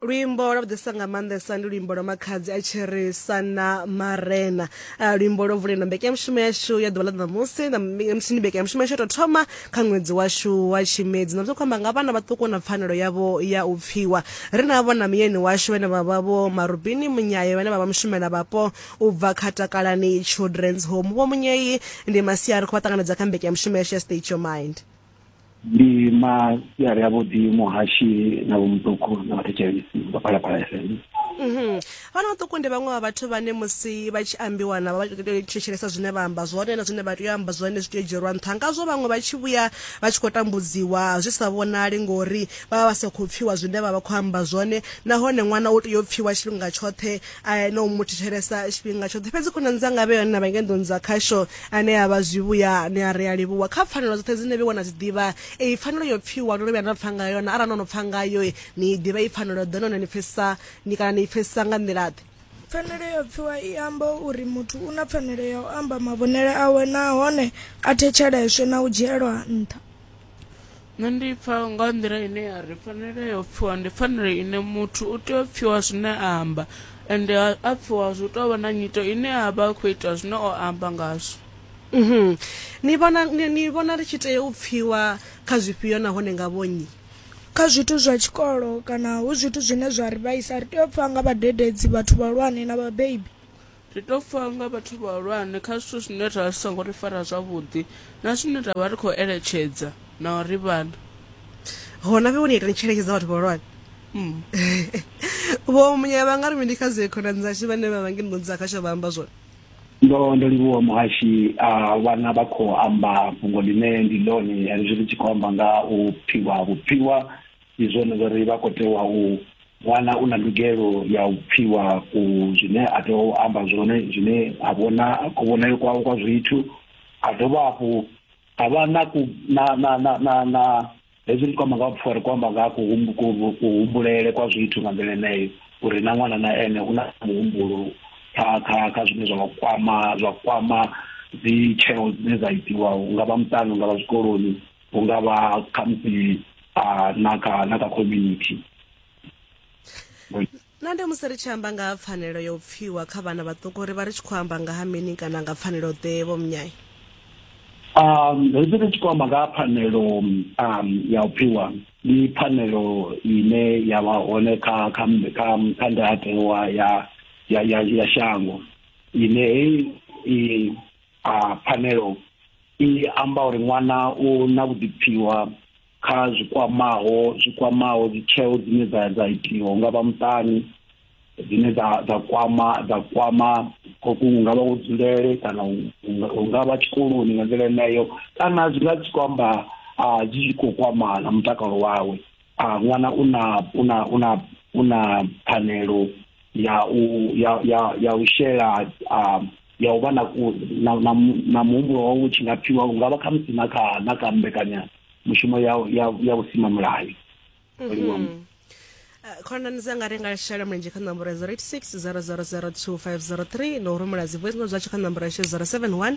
luimbo lwa vhuḓisa nga maanḓesa ndi luimbo lwa makhadzi a tsherisa na marena ah, luimbo lwo vulendo mbekanyamushumo yashu ya ḓuvha ḽa ṋamusi musi ndi mbekanyamushumo yashu ya tou thoma kha ṅwedzi washu wa tshimedzi na zwi khou amba nga vhana vhaṱuku na pfanelo yavho ya u pfiwa ri na vhona muyeni washu vhane vha vha vho marubini munyaye vhane vha vha mushumela vhapo u bva kha takalani children's home vho munyeyi ndi masia ri khou vha ṱanganedza kha mbekanyamushumo yashu ya state your mind ndi masiari a vhuḓi muhashi na vho muṱuku na vhathetshelesi vha phalaphala fm mhm. vhana vhaṱuku ndi vhaṅwe vha vhathu vhane musi vha tshi ambiwa na vha thetshelesa zwine vha amba zwone na zwine vha tea u amba zwone zwi tea u dzhielwa nṱha ngazwo vhaṅwe vha tshi vhuya vha tshi khou tambudziwa zwi sa vhonali ngori vha vha vha sa khou pfhiwa zwine vha vha khou amba zwone nahone ṅwana u tea u pfhiwa tshifhinga tshoṱhe eh, na u mu thetshelesa tshifhinga tshoṱhe fhedzi khonani dzanga vhe yone na vha ngenḓoni dza khasho ane a vha zwivhuya ni a ri a livhuwa kha pfanelo dzoṱhe dzine vhe wana dzi ḓivha eyi pfanelo yo pfiwa ndo lovhuya na pfa nga yone arali no no pfa ngayo ni i ḓivha i pfanelo ḓe none ni pfesesa ni kana ni i pfesesa nga nḓila ḓe pfanelo yo pfiwa i amba uri muthu u na pfanelo ya u amba mavhonele awe nahone a thetsheleswe na u dzhielwa nṱha nṋe ndi pfa nga nḓila ine ya ri pfanelo ya u pfiwa ndi pfanelo ine muthu u tea u pfiwa zwine a amba ende a a pfiwa zwi u tou vha na nyito ine a vha a khou ita zwine o amba ngazwo Mhm. ni vhona ni ni vhona ri tshi tea u pfiwa kha zwifhio nahone nga vhonnyi kha zwithu zwa tshikolo kana hu zwithu zwine zwa ri vhaisa ri tea u pfha nga vhadededzi vhathu vhahulwane na vhabebi Ri tou pfa nga vhathu vhahulwane kha zwithu zwine zwa zwi songo ri fara zwavhuḓi na zwine ra vha ri khou eletshedza na uri vhana hona vhe woni itani tsheletshedza vhathu vhahulwane mm. vho munya vha nga ri mini kha zwe khonani dzashu vhane vha vhangi nḓuni dza khasho vha amba zwone ndo ndo livhuwa muhashi a vhana vha khou amba fhungo ḽine ndi ḽone hezwi ri tshi khou amba nga u pfiwa vhupfiwa ndi zwone zwori vha khou tewa u ṅwana u na ndugelo ya u pfiwa ku zwine a tea u amba zwone zwine a vhona kuvhonele kwawe kwa zwithu a dovha hafhu a vha na ku na na na na na hezwi ndi kwamba nga ha vhufa ri kwamba nga ha kuhumbulele kwa zwithu nga nḓila eneyo uri na ṅwana na ene u na muhumbulo kha kha kha zwine zwa kwama zwa kwama dzi tsheo dzine dza itiwa nga vha muṱani nga vha zwikoloni hu nga vha khamusi na kha na kha community na ndi musi ri tshi amba nga ha pfanelo ya u pfiwa kha vhana vhaṱuku ri vha ri tshi khou amba nga ha mini kana nga pfanelo ḓe vho mnyai um hezwi ri tshi khou amba nga ha pfanelo um ya u pfiwa ndi pfanelo ine ya vha hone kha kha kha kha ndayotewa ya ya ya shango ine hei a pfanelo i amba uri ṅwana u na vhuḓipfiwa kha zwikwamaho zwikwamaho dzitsheo dzine dza dza itiwa nga vha muṱani dzine dza dza kwama dza kwama koku nga vha dzulele kana u nga vha tshikoloni nga nḓila yeneyo kana zwi nga si kwamba a dzi khou kwama na mutakalo wawe a ṅwana u na u na u na u na pfanelo ya u ya ya ya u shela a ya u vha na na na muhumbulo wa u tshi nga pfiwa u nga vha kha musi na kha na kha mbekanya mushumo ya ya ya u sima mulayo mhm. eh, khonani dza nga ri nga shela mulenzhe kha nomboro ya 086 0002503 na u rumela dzi voice note zwatsho kha nomboro ya 071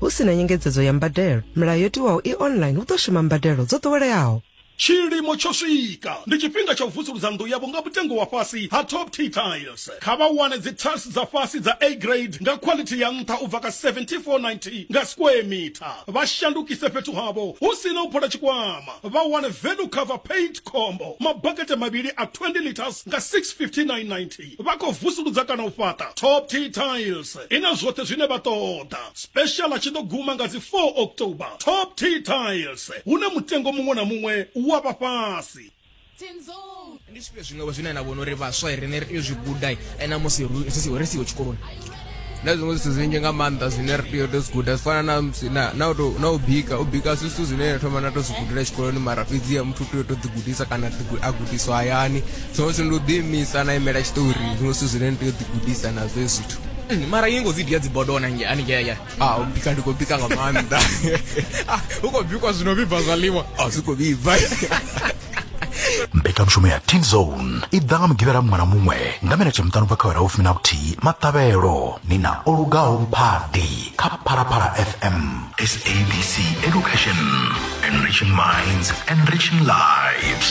Hu si na nyengedzedzo ya mbadelo, milayo yo tiwaho i online hu ḓo shuma mbadelo dzo ḓoweleaho. Tshilimo tsho swika. Ndi tshifhinga tsha u vusuludza nnḓu yavho nga mutengo wa fhasi ha Top T Tiles. Kha vha wane dzi tiles dza fhasi dza A Grade nga khwalithi ya nṱha u bva kha R74.90 nga square meter. Vha shandukise fhethu havho hu si na u phola tshikwama. Vha wane Venu Cover Paint Combo, mabakete mavhili a 20 litres nga R659.90. Vha khou vusuludza kana u fhaṱa Top Tea Tiles i na zwoṱhe zwine vha ṱoḓa. Special a tshi ḓo guma nga dzi 4 October. Top Tea Tiles, hune mutengo muṅwe na muṅwe u wa vha fhasi. Ndi zwifhio zwiṅwevho zwine na vhona uri vhaswa riṋe ri tea u zwi guda na musi ri siho tshikoloni? na zwiṅwe zwithu zwinzhi nga maanḓa zwine ri tea u to zwi guda zwi fana na u bika u bika zwi zwithu zwine thoma na to zwi gudela tshikoloni mara fhedzi ya muthu u tea u to ḓi gudisa kana a gudiswa hayani zwiṅwe zwithu ndi u ḓiimisa na imela tshiṱori zwiṅwe zwithu zwine ni tea u ḓi gudisa na zwe zwithu hmm, mara yi ngo vidio ya dzibodo ona nge ani ngeya a ah, u bika ndi khou bika nga maanḓa ah, u khou bikwa zwino vhibva zwaḽiwa a ah, zwi khou vhibva mbekanyamushumo ya teen zone i ḓa nga mugivhela muṅwe na muṅwe nga minete muṱanu bva kha wera vhufumi na vhuthihi maṱavhelo ni na o lugaho mphadi kha phalaphala fm sabc education enriching minds enriching lives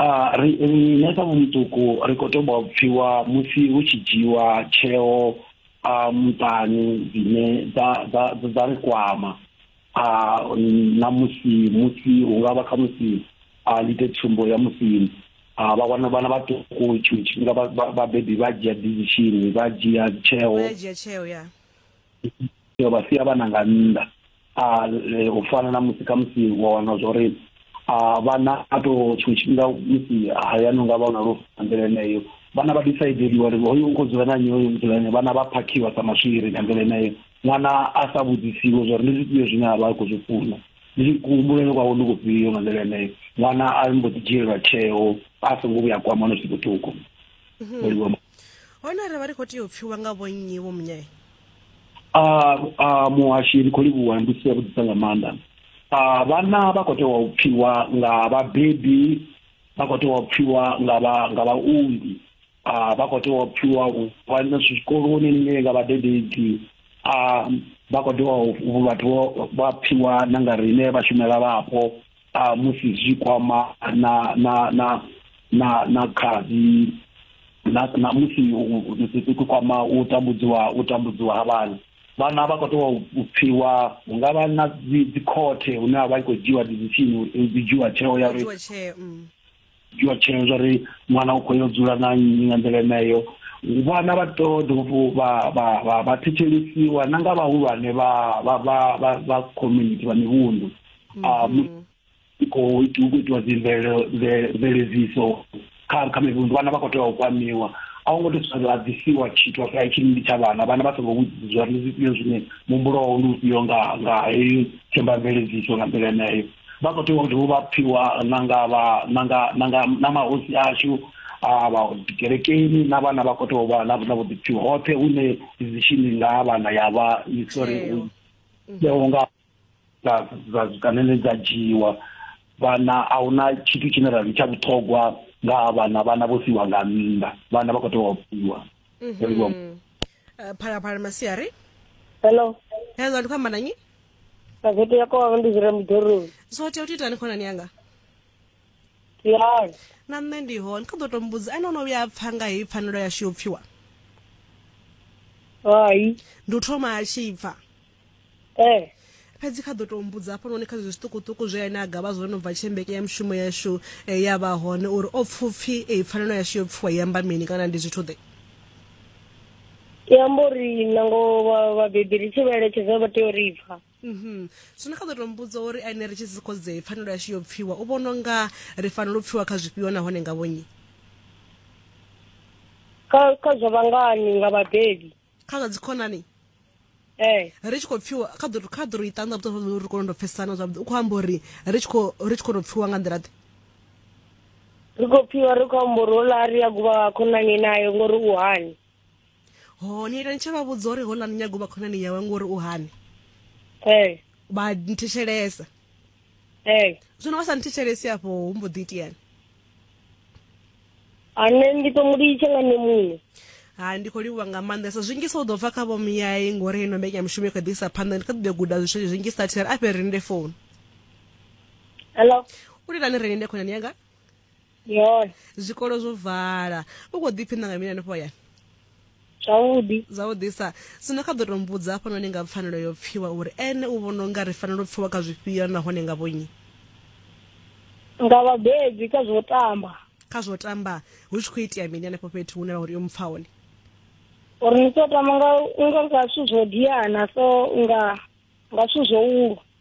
Uh, ri nṋe sa muṱuku ri khou toba u pfiwa musi hu tshi dzhiwa tsheo a uh, muṱani dzine dza ri kwama a uh, na musi musi hu nga vha kha musi a ndi ite tsumbo ya musi a vha wana vhana vhaṱuku tshiṅwe tshifhinga vhabebi vha dzhia decision vha dzhia tsheo yo vha sia vhana nga nnḓa a e, u fana na musi kha musi wa wana zwa uri vhana a to tshiṅwe tshifhinga musi hayani unga vha na lufu nga nḓila eneyo vhana vha disaideliwa uri hoyu u khou dzula na nnyi hoyu u dzula nnyi vhana vha phakhiwa sa maswiri nga nḓila eneyo ṅwana a sa vhudzisiwe zwa uri ndi zwifhio zwine a vha a khou zwi funa ndi kuhumbulele kwawe ndi kufhio nga nḓila eneyo ṅwana a mbo ḓi dzhielelwa tsheo a songo vhuya kwama no zwiṱukuṱuku mhm. hone arali vha ri khou tea u pfiwa nga vhonnyi vho munyee a muhashi ndi khou livhuwa ndi si yavhuḓisa nga maanḓa a vhana vha khou tea u pfiwa nga vhabebi vha khou tea u pfiwa nga vha nga vhaunḓi a vha khou tea u pfiwa u vhana zwikoloni nne nga vhadededzi a vha khou tea vhathu vha pfiwa na nga riṋe vhashumela vhapo a musi zwi kwama na na na na na khadzi na na musi ku kwama u tambudziwa u tambudziwa ha vhana vhana vha khou tea u pfiwa hu nga vha na dzikhothe hune a vha i khou dzhiwa dizisini uri i dzhiwa tsheo ya uri mm. dzhiwa tsheo zwa ri ṅwana u khou yo dzula na nnyi nga nḓila eneyo vhana vha to dovha vha vha vha vha thetshelesiwa na nga vhahulwane vha vha vha vha vha community vha mivhundu mm-hmm. a ah, khou itiwa dzi mveledziso kha kha mivhundu vhana vha khou tea u kwamiwa a ngo to sala disiwa tshithu sa itshi ndi tsha vhana vhana vha songo vhudzwa ndi zwifhio zwine muhumbulo wao ndi ufhio nga nga heyo themba mveledziso nga nḓila eneyo vha khou tea u dovha vha pfiwa na nga vha na nga na nga na mahosi ashu a vha kerekeni na vhana vha khou tea u vha na na vhuḓipfi hoṱhe hune decision nga vhana ya vha sorry yeo nga dza dza kanene dza dzhiwa vhana a huna tshithu tshine ra ri tsha vhuṱhogwa nga vhana vhana vho siwa nga nnḓa vhana vha khou tea u pfiwa phalaphala masiari hello hello ndi khou amba na nyi Gazete ya kwanga ndi dzula muḓoroni. so tea u to itani khonani yanga Tiyani. na nṋe ndi hone kha ḓo to mbudza ane o no vhuya a pfa nga heyi pfanelo yashu yo pfiwa Hai. ndi u thoma a tshi pfa Eh. fhedzi kha ḓo to mbudza hafhanoni kha zwezwi zwiṱukuṱuku zwe ane a gavha zwo no bva tshembeke ya mushumo yashu eh, ya vha hone uri o pfupfi eh, pfanelo yashu yo pfiwa i amba mini kana ndi zwithu ḓe i amba uri nango vhabebi ri tshi vha eletshedza vha tea u ri pfha mhm. zwino kha ḓo to mbudza uri ane ri tshi si khodzee pfanelo yashu yo pfiwa u vhona nga ri fanela u pfiwa kha zwifhio nahone nga vhonyi kha zwa vhangani nga vhabebi kha zwa dzikhonani eh. ri tshi khou pfiwa kha ḓo kha ḓo ri ṱanḓa vhuṱo ri kone ndo pfesana zwavhuḓi u khou amba uri ri tshi khou ri tshi khou tou pfiwa nga nḓila ḓe ri khou pfiwa ri khou amba uri hola ri ya guvha khonani nayo ngori u hani ho ni ita ni tshi vha vhudza uri hola ni nyaga u vha khonani yawe ngori u hani ee eh. vha nthetshelesa ee eh. zwino vha sa nthetshelesi afho hu mbo ḓi itiani ane ndi to mu litsha nga nṋe muṋe hai ndi khou livhuwa nga maanḓesa zwinzhisa u ḓo bva kha vho muyai ngori ino mbekanyamushumo i kha ḓi isa phanḓa ndi kha ḓi ḓo guda zwithu zwinzhisa thera a fhe ri linde founu hello u lilani ri linde khonani yanga ndi hone zwikolo zwo vala u khou ḓiphinda nga mini hanefho hayani zwavhuḓi zwavhuḓisa sino kha ḓo to mbudza hafhanoni nga pfanelo yo pfiwa uri ene u vhona unga ri fanela u pfiwa kha zwifhio nahone nga vhonyi nga vhabebi kha zwo tamba kha zwo tamba hu tshi khou itea mini hanefho fhethu hune vha uri yo mpfa hone uri ni tshi tamba nga unga nga zwithu zwo diana so unga nga zwithu zwo ulwa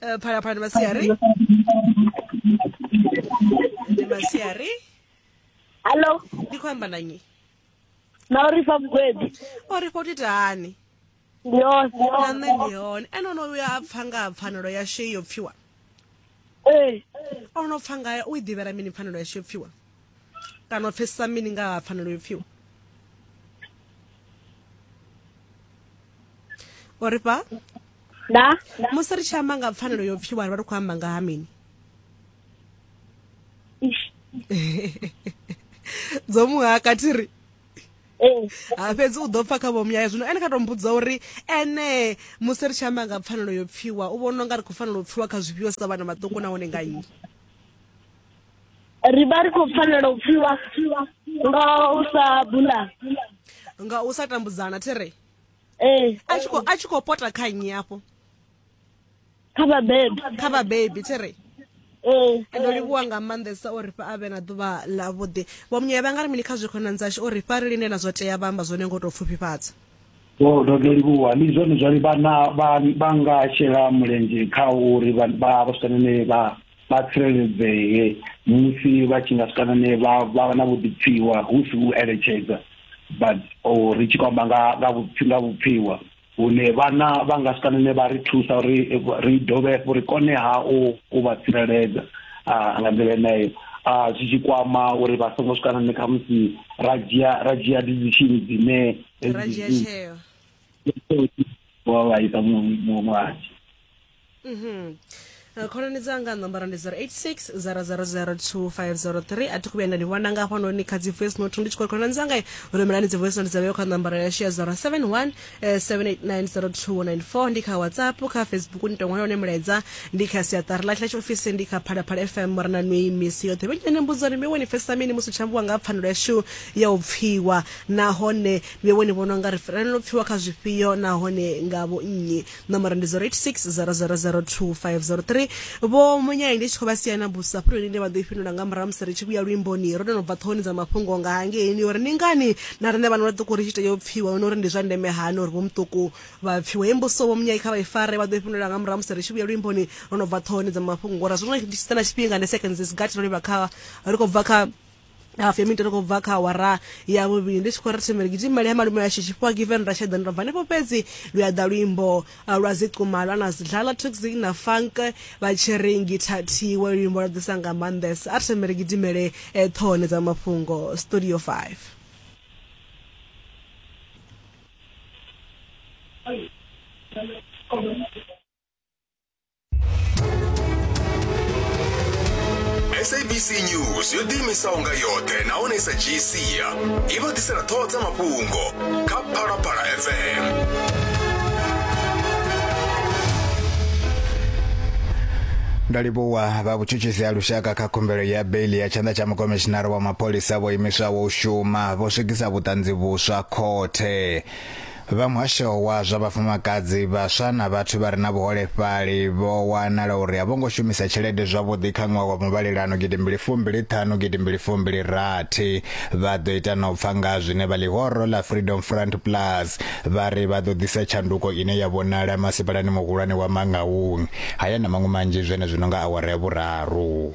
Eh, phalaphala ndi masiari ndi masiari hallo ndi khou amba na nnyi na uri fa mugwebi o ri khou titani ndi yone na nṋe ndi hone ene ono vhuya a pfa nga ha pfanelo ya shei yo pfiwa ee ono pfa ngayo u i ḓivhela mini pfanelo ya shei yo pfiwa kana u pfesesa mini nga ha pfanelo yo pfiwa o ri fha da musi ri tshi amba nga pfanelo yo pfiwa ri vha ri khou amba nga ha mini dzo muha kathiri ee ha ah, fhedzi u ḓo pfa kha vhomuyayo zwino ene kha to mbudza uri ene musi ri tshi amba nga pfanelo yo pfiwa u vhona unga ri khou fanela u pfiwa kha zwifhio sa vhana vhaṱuku nahone nga nnyi ri vha ri khou fanela u pfiwa nga u sa bula nga u sa tambudzana there ee eh. a tshi khou a tshi khou pota kha nnyi afho kha vhabebi kha vhabebi there Eh, ndo eh. livhuwa nga maanḓesa o ri fha a vhe na ḓuvha ḽa vhuḓi vho munyaya vha nga ri mini kha zwikhonani dzashu o ri fha ri linde na zwo tea vha amba zwone ngo tou pfufhifhadza o oh, ndo ndo livhuwa ndi zwone zwali vhana vha nga shela mulenzhe kha uri vha vha sane ne vha vha tsireledzee musi vha tshi nga swika nane vha vha na vhuḓipfiwa hu si u eletshedza but or ri tshi kwamba nga nga vhupfi nga vhupfiwa hune vhana vha nga swika nane vha ri thusa uri ri dovhe hafhu ri kone ha u u vha tsireledza nga nḓila yeneyo a zwi tshi kwama uri vha songo swika nane kha musi ra dzhia ra dzhia decision dzine ra dzhia tsheo wa vhaisa muṅwe muṅwe Eh, khonani dzanga ṋomboro ndi 086 000250 a thi khuvhuya nda ni vhona nga hafhanoni kha dzi voice note ndi tshi khou khonani dzanga rumelani dzi voice note dza vheyo kha ṋomboro yashu ya 071 eh, 7890294 ndi kha whatsapp kha facebook ni tongola hone mulaedza ndi kha siaṱari ḽa tshila tshiofisi ndi kha phalaphala fm mora na nwi misi yoṱhe vhenyane mbudzo ni miwe ni pfesesa mini musi tshambiwa nga pfanelo yashu ya u pfiwa nahone miwe ni vhona unga ri fanela u pfiwa kha zwifhio nahone nga vho nnyi nomboro ndi 0860002503 vho munyayi ndi tshi khou vha sia na busa hafho lune vha ḓo i fhindula nga murahu musi ri tshi vhuya luimboni ro no bva ṱhohoni dza mafhungo nga hangeini uri ndi ngani na riṋe vhana vhaṱuku ri tshi tea u pfiwa hone uri ndi zwa ndeme hani uri vho muṱuku vha pfiwe he mbuso vho munyayi kha vha i fare vha ḓo i fhindula nga murahu musi ri tshi vhuya luimboni ro no bva ṱhohoni dza mafhungo ngori zwino ndi tshi sala tshifhinga ndi seconds is gut ro livha kha ri khou bva kha hafu ya mitero kho bva kha awara ya vhuvhili ndi tshi khou ri thembele gidimele ya malume ya shishi fhiwa given ra sheḓani ra bva hanefho fhedzi lu ya ḓa luimbo uh, lwa ziquma lwa na zidlala toxic na funk vha tshi ri ngithathiwe luimbo lwa ḓisa nga maanḓesa a ri thembele gidimele eh, ṱhohoni dza mafhungo studio 5 Thank you. sabc news yo ḓiimisaho nga yoṱhe nahone i sa dzhii sia i vha ḓisela ṱhoho dza mafhungo kha phalaphala fm ndo livhuwa vha vhutshutshisi ha lushaka kha khumbelo ya beili ya tshanḓa tsha mukomishinara wa mapholisa vho imiswaho u shuma vho swikisa vhuṱanzi vhuswa khothe Vha muhasho wa zwa vhafumakadzi, vhaswa na vhathu vha re na vhuholefhali vho wanala uri a vho ngo shumisa tshelede zwavhuḓi kha ṅwaha wa muvhalelano gidi mbili fumbili ṱhanu gidi mbili fumbili rathi. Vha ḓo ita na u pfa nga ha zwine vha ḽihoro ḽa Freedom Front Plus vha ri vha ḓo ḓisa tshanduko ine ya vhonala masipalani muhulwane wa Mangaung. Haya na maṅwe manzhi zwenezwino nga awara ya vhuraru.